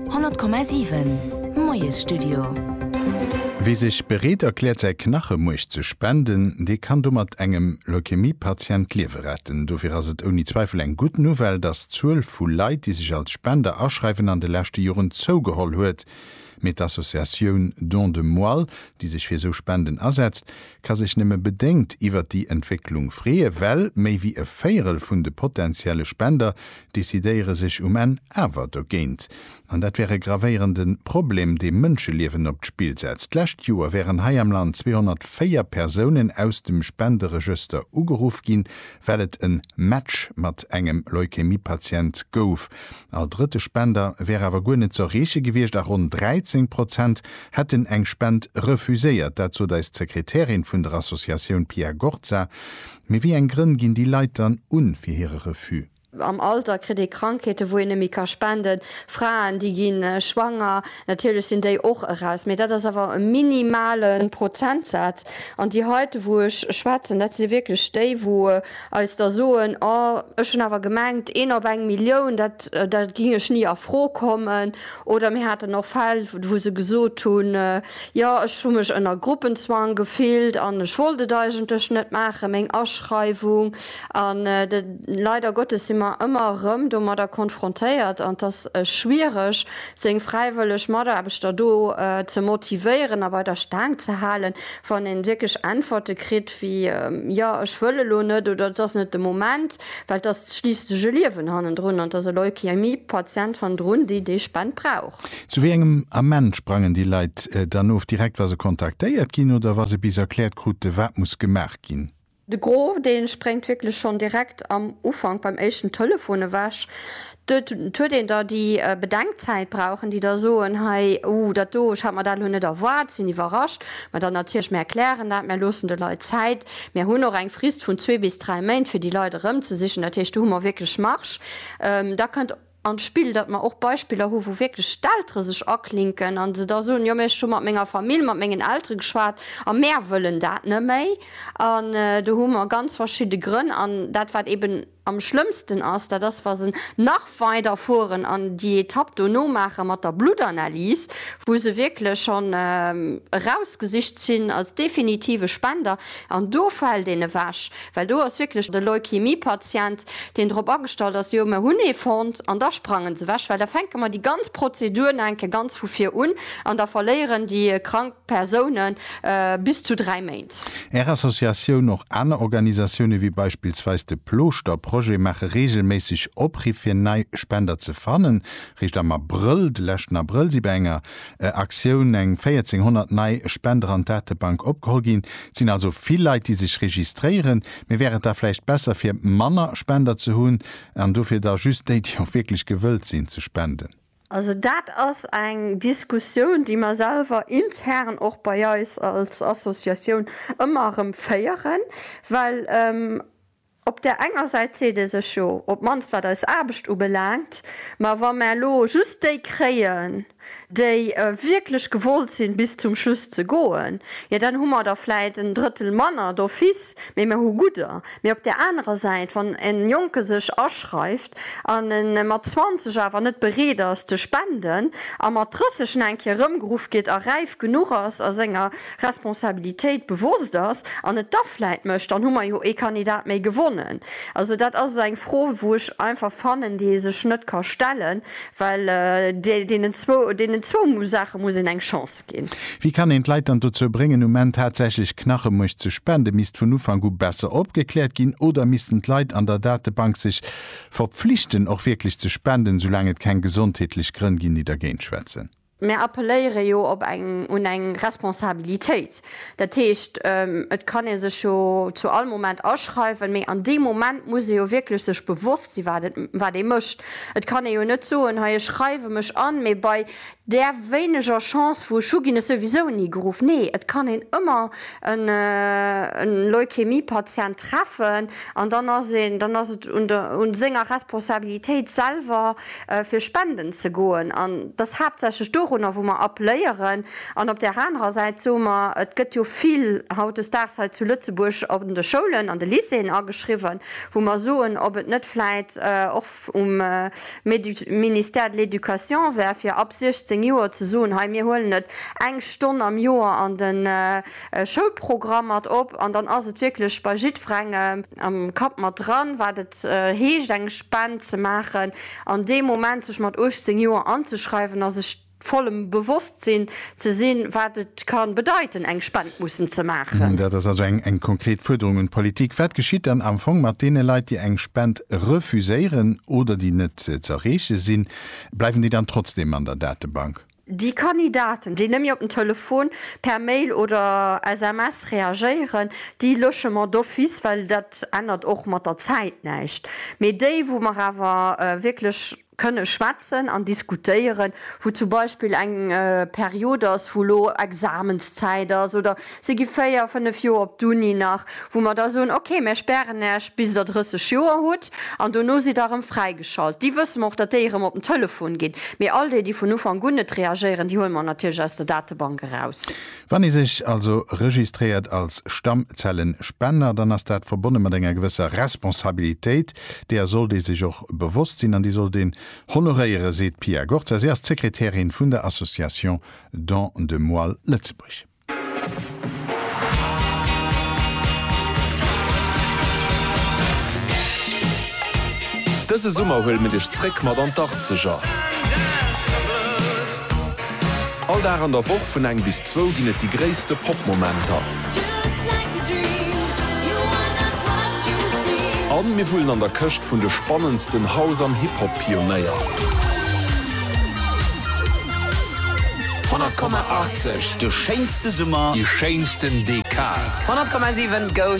100,7 Moiesstudio. Wie sech bereet erkläert säi Knachemuerch ze spenden, dee kann domat engem Leukämie-Patient d'Liewe retten. Dofir ass et ouni Zweifel eng gutt Nouvelle, datt d'Zuel vu Leit, déi sech als Spender aschreiwen, an de leschte Joren zougeholl huet. Mee d'Associatioun Don de Moelle, déi sech fir esou Spenden asetzt, ka sech nëmme bedéngt iwwert déi Entwécklung freeë well méi wéi e Véierel vun de potentielle Spender decidéiere sech um Enn awer dogéint. An dat wär e gravéierende Problem, dee Mënscheliewen op d'Spill setzt. D'lescht Joer wären hei am Land 204 Persounen aus dem Spenderegëster ugeruff ginn, well et e Match mat engem Leukämie-Patient gouf. All drëtte Spender wär awer guer net ze erreeche gewiescht a ronn 13 Prozent hätten eng Spend refuséiert. Dat sot eis d'Sekretärin vun der Associatioun Pia Gorza. Mee wéi eng Grënn ginn déi Leit dann un fir hire Refus? Am Alter kritt ee Krankheeten, wou een net méi ka spenden. Fraen, déi gi schwanger. Natierlech sinn déi och eraus, mee dat ass awer e minimale Prozentsaz. An déi heite wou ech schwätzen, dat si wierklech déi, wou eis da soen, oh ech hunn awer gemengt, een op eng Millioun, dat da géing ech ni a Fro kommen. Oder mir haten och Fäll, wou se gesot hunn, Jo, ech hu mech ënner Gruppenzwang gefillt an ech wollt et eigentlech net maachen, meng Aschreiwung, an leider Gottes si mer ëmmer erëm domadder konfrontéiert an et ass schwiereg seng fräiwëlleg Mataarbechter do ze motivéieren a bei der Staang ze halen, wann een wierklech Äntwerte kritt wéi, jo, ech wëll elo net oder et ass net de Moment. Well et ass schliisslech e Liewen hannendrun an et ass e Leukämie-Patient hannendrun, déi déi Spend brauch. Zu wéi engem Ament sprangen déi Leit dann of, direkt wa se kontaktéiert ginn oder wa se bis erkläert krute wat muss gemaach ginn? De Gros dee spréngt wierklech schonn direkt am Ufank beim éischten Telefon ewech. Dot huet een da déi Bedenkzäit brauchen, déi da soen, hei, uh, dat do, ech hat mer dat elo net erwaart, sinn iwwerrascht. Mä dann natierlech, mär klären dat, mär loossen de Leit Zäit, mär hunn och eng Frist vun zwee bis dräi Méint, fir déi Leit erëmzesichen. Dat heescht, do hu mer wierklech Marge. Da kënnt an d'Spill, datt mer och Beispiller hu wou wierklech d'Eltere sech aklinken a se da soen, jo, mä ech hu mat menger Famill, mat mengen Eltere geschwat a mär wëllen dat neméi. An do hu mer ganz verschidde Grënn an dat wat eben, Am schlëmmsten ass, dat ass wa se nach weider fueren an déi Etapp dono maache mat der Bluttanalys, wou se wierklech schonn erausgesicht sinn als definitive Spender, an do fält een ewech, well do ass wierklech de Leukemie-Patient, deen drop agestallt ass, jo mir hunn ee fonnt, an da sprangen se ewech, well da fänke mer déi ganz Prozedur nach eng Kéier ganz vu vir un an da verléieren déi krank Persounen bis zu dräi Méint. Stad. Är Associatioun, och aner Organisatioune wéi beispillsweis de Plooschterprojet maache reegelméisseg Opriff fir nei Spender ze fannen. Réischt am Abrëll, de leschten Abrëll, si bei enger Aktioun eng 1400 nei Spender an d'Datebank opgeholl ginn. Et sinn also vill Leit déi sech registréieren, mee wär et da vläicht besser fir manner Spender ze hunn an dofir da just déi, déi och wierklech gewëllt sinn ze spenden? Also dat ass eng Diskussioun, déi mer selwer intern och bei eis als Associatioun ëmmer erëm féieren, well op där enger Säit seet ee sech, jo, op d'mannst wat eis Aarbecht ubelaangt, ma wa mer elo just déi kréien, déi wierklech gewollt sinn, bis zum Schluss ze goen, jo dann hu mer der vläit en Drëttel manner d'office, mee mer hu gudder. Mee op där anerer Säit, wann e Jonke sech aschreift, an en mat 20 awer net bereet ass ze spenden a mat 30 en eng Kéier erëmgeruff gétt a räif genuch ass a senger Responsabilitéit bewosst ass an et da vläit mécht, dann hu mer jo ee Kandidat méi gewonnen. Also dat ass eng Fro wou ech einfach fannen, déi ee sech net ka stellen, well deenen zwou Saache muss een eng Chance ginn. gestoppt ginn. Wéi kann een d'Leit dann dozou bréngen, um Enn tatsächlech Knachemuerch ze spenden? Misst vun Ufank u besser opgekläert ginn oder missten d'Leit an der Datebank sech verpflichten, och wierklech ze spenden, soulaang et keng gesondheetlech Grënn ginn, déi dergéint schwätzen? Mir appelléiere jo op eng, un eng Responsabilitéit. Dat heescht, et kann ee sech jo zu all Moment aschreiwen, mee an deem Moment muss ee jo wierklech sech bewosst sinn, wat ee mécht. Et kann ee jo net soen, hei ech schreiwe mech an, mee bei Där wéineger Chance vu Schuh ginn ech souwisou ni geruff. Nee, et kann een ëmmer e Leukämie-Patient treffen an dann ass een, dann ass et un senger Responsabilitéit selwer fir spenden ze goen an et ass haaptsächlech dorunner wou mer appléieren. An op där anerer Säit soe mer, et gëtt jo vill hautdesdaags hei zu Lëtzebuerg an de Schoulen, an de Lycéeën ageschriwwen, wou mer soen, ob et net vläit och, vum Ministère de l'Education wär fir ab 16 Joer ze soen, hei mir huelen et eng Stonn am Joer an de Schoulprogramm mat op an dann ass et wierklech bei jiddwerengem am Kapp mat dran, wat et heescht eng Spend ze maachen an dee Moment sech mat 18 Joer anzeschreiwen a sech vollem Bewosstsinn ze sinn, wat et ka bedeiten, eng Spend mussen ze maachen. Dat ass also eng konkret Fuerderung un d'Politik. Wat geschitt dann am Fong mat deene Leit, déi eng Spend refuséieren oder déi net z'erreeche sinn? Bleiwen déi dann trotzdeem an der Datebank? Déi Kandidaten, déi nëmme op den Telefon, per Mail oder SMS reagéieren, déi lösche mer d'office, well dat ännert och mat der Zäit näischt. Mee déi, wou mer awer wierklech kënne schwätzen an diskutéieren, wou zum Beispill eng Period ass, wou elo Examenszäit ass oder se gi véier, fënnef Joer op d'Uni nach, wou mer da soen, okay, mir spären Iech, bis Der 30 Joer hutt an dono sidd Der erëm fräigeschalt. Déi wësse mer och, datt déi erëm op den Telefon ginn. Mee all déi, déi vun Ufank un net reagéieren, déi huele mer natierlech aus der Datebank eraus. Wann ee sech also registréiert als Stammzellenspender, dann ass dat verbonne mat enger gewësser Responsabilitéit, Deeër sollt ee sech och bewosst sinn an déi sollt een honoréieren, seet d'Pia Gorza. Si ass d'Sekretärin vun der Association Don de Moelle Lëtzebuerg. Dëse Summer huele mir dech zréck mat an d'Arkzeger! All Dag an der Woch vun eng bis zwou ginn et déi gréisste Pop-Momenter. A mir wullen an der Këscht vun de spannendsten House an Hip-Hop-Pionéier. 100,80, de schéinste Summer, déi schéinsten Dekad. 100,7 goes